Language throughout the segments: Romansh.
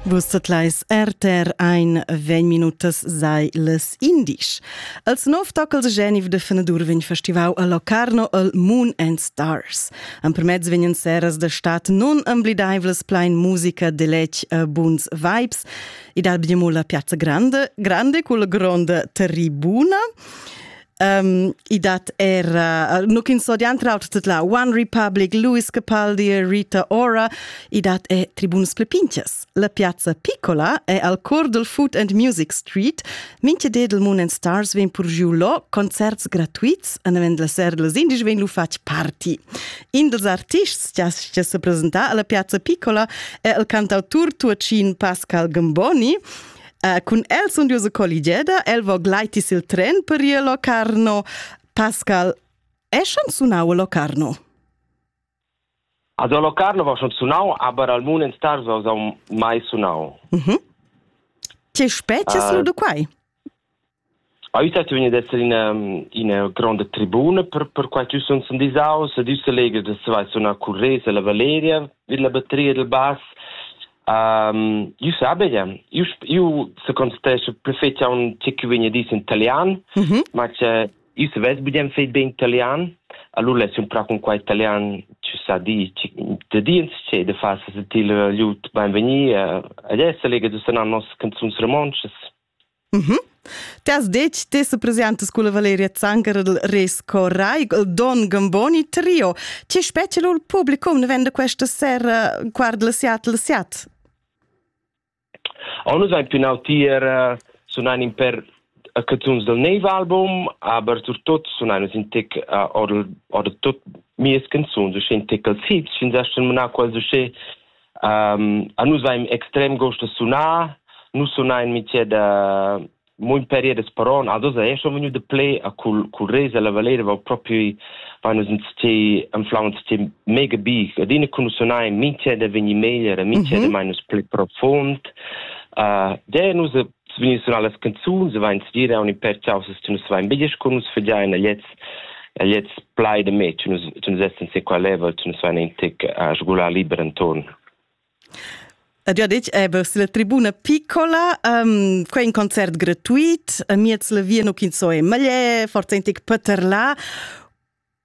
Vus tetlais RTR ein vegn minutas sei les indisch. Als nov tocals Geneve de Fenadur vegn festivau a Locarno el Moon and Stars. Ampermezz vegnan seras de stat non amblidaivles plein musica de lec e buns vibes. Id albiamo la piazza grande, grande cul gronda tribuna. Um, I dat era, nu ch'ins so diantrauter tut la One Republic, Louis Capaldi e Rita Ora, i dat e tribuns pli pinches. La piazza Piccola è al cor del Food and Music Street. Minche dedel Moon and Stars vegn pur giu lo, concerts gratuits, an avend la ser dels indici vegn lu fatg party. In dels artists che che se presenta alla piazza Piccola è il cantautur tuacin Pascal Gamboni, Uh, cun el sun duos colligeda, el vo glaitis il tren per ir a Locarno. Pascal, eschan sunau a Locarno? Also Locarno war schon sunau, aber al mun en stars was am mai sunau. Mhm. Che specie uh, lu de quai? Ei stat ün d'esser ina ina gronda tribuna per per quai ch'jeu sun sun disaus ed ün selegr da saver sunar curresa la Valeria vid la battria dal bass. Io sabegia, io io secontestescho perfettamain tge che vegn a dir in italian, ma che io savess bugen far bene italian, allura less ün prà cun quai italian chi sa dir da dir insche da far sentir lur lut beinvegni ed es selegr da sunar nossas canzuns romontschas. Mm -hmm. T'has detg, te se presentas con la Valeria Zanger del Res Coraig, il Don Gamboni Trio. Ci specie il publicum ne vende questa sera guarda la Seat la Seat? On is eigentlich genau tier uh, sunan in per uh, canzuns del neve album, aber surtot sunan in tic uh, oder oder tot mies canzuns, so schön tic als hits, schön sesten mena qual so schön Um, a nus vaim extrem gost da sunar. Nus sunain mitier da munt periodas paron a dosa e schon vegnu de play a cul cul resa la valera va proprio va nus uns ti an flauns ti mega bi ad in kun sunai mintje de veni meglier mintje de mhm. minus play profond uh de nus vegni surar las canzuns e vain stgira aun in per chausas che nus vain biglisch con nus fegiain agliets agliets plai de me che nus che nus essen se qua level che nus vain in tic a sgular liber intorn Ed io ditg, eh, vers la tribuna piccola, um, quei è un concert gratuit, a miez la via nu kin so e malie, forzentig Peterla.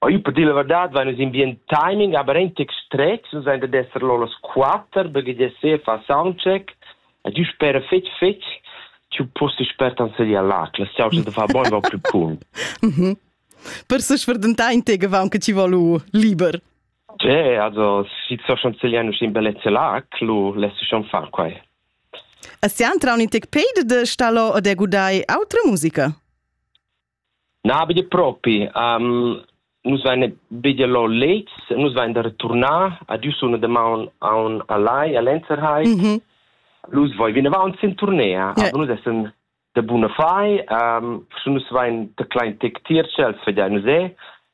Oi per dir la verdad vain nus in bien timing, aber entec strets, nus ein dad esser lo las quatter, perché de se fa soundcheck, e du spera fetg fetg, tu posti spert an sedia là, che la soundcheck de fa bon va più cool. Mhm. Per se sferdentà in te gevan che ti valu liber. Cioè, also, si so schon segliano in bellezza là, lu lässt schon far quai. E sian traun in tec peide de stallo ad e gudai autra musica? Na, betg propi. Nus vain bger lò lez, nus vain da returnar. Adü suna damaun aun a Lai, a l'Enzerheim. Nus voin vinavant sin turnea. Aber nus essan da buna fai. Sche nus vain da klein tec tier ch'els vegian usè.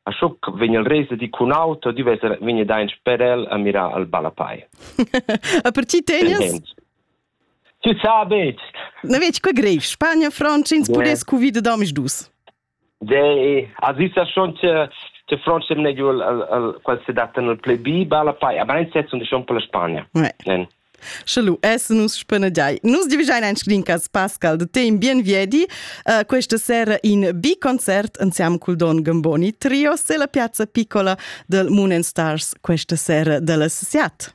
A schoc vegn el resa di cun auto, di vesa vegn dain sper el a mirar al Balapai. A per ti tegnas? Tu sa betg. Na vedi, que grev. Spagna, Frantscha, ins pudess cuvida damis dus. De, as isa schon te Francia meglio al al qual se data nel play B balla pai a brain set und schon per la Spagna. Ja. Sche lu essen nus spenedai. Nus divigein ein sclincas Pascal de teim bien viedi uh, questa sera in B concert insieme col Don Gamboni Trio se la piazza piccola del Moon and Stars questa sera della Siat.